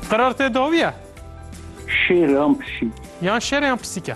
Qerar tê dawiye? Şêr yan pisîk? Yan şêr yan pisîk e?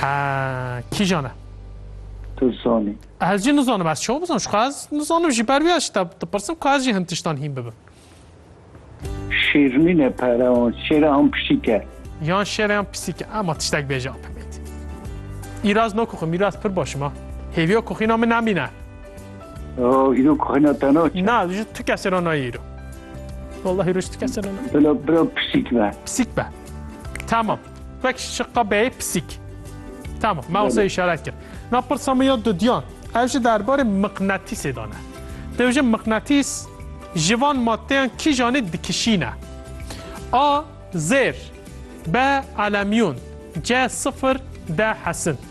Ha, kîjan e? Tu zanî. Ez jî nizanim, ez çawa bizanim? Şixwe ez nizanim jî ber wî ez ji te dipirsim ku ez jî hin tiştan hîn bibim. Şêrîn e pere wan, şêr yan pisîk e? Yan şêr yan pisîk e, ema tiştek bêje apemêt. Îraz nakoxim, îraz pir başim ha. Hêviya koxîna min nemîne. Oh, îro kuxina te naçe. Na, ji tu kesê re nayê îro. Wallahî îro ji tu kesê re nayê. Bila bila pisîk be. Pisîk be. Tamam. Wek şiqa beyê pisîk. Tamam, me wasa îşaret kir. Na pirsa min ya dudiyan. Ev ji derbarê miqnetîsê de ne. Dew ji miqnetîs ji van maddeyan kîjanê dikişîne. A zêr, B elemyûn, C sifir, D hesin.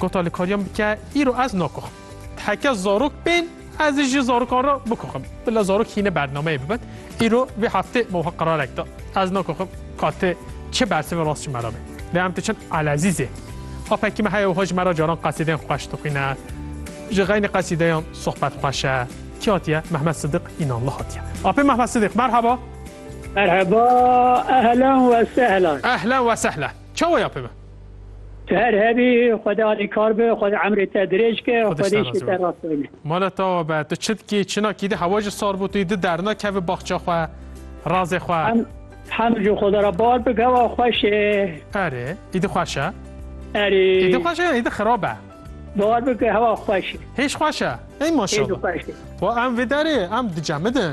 Gota li kariyan bike îro ez nakoxim. Heke zarok bên ez ji zarokan re bikoxim. Bila zarok hîne bernameyê bibin. Îro vê heftê me wiha qerarek da. Ez nakoxim ka ti çi bersivê rast ji me re be. Lê em diçin Elezîzê. Apekî me heye wiha ji me re caran qesîdeyên xweş dixwîne. Ji xeynî qesîdeyan sohbet xweş e. Kî hatiye? Mehmet Sidiq Înanli hatiye. Apê Mehmet Sidiq merheba. Merheba, ehlen we sehlen. Ehlen we sehlen. Çawa ye apê me? Tu her hebî Xwedê alîkar bi, Xwedê emrê te dirêj ke, Xwedê îşê te rast bine. Mala tawa be, tu çi dikî, çina kî di hewa ji sar bûtî, di dernakevî baxça xwe, razê xwe. Hem hem ji Xweda re bar bi, gewa xweş e. Erê, îdi xweş e. Erê. Îdi xweş e ya îdi xirab e? Bar bi ke hewa xweş e. Hêj xweş e. Ey maşallah. Hêj xweş e. Wa em vê derê em dicemidin.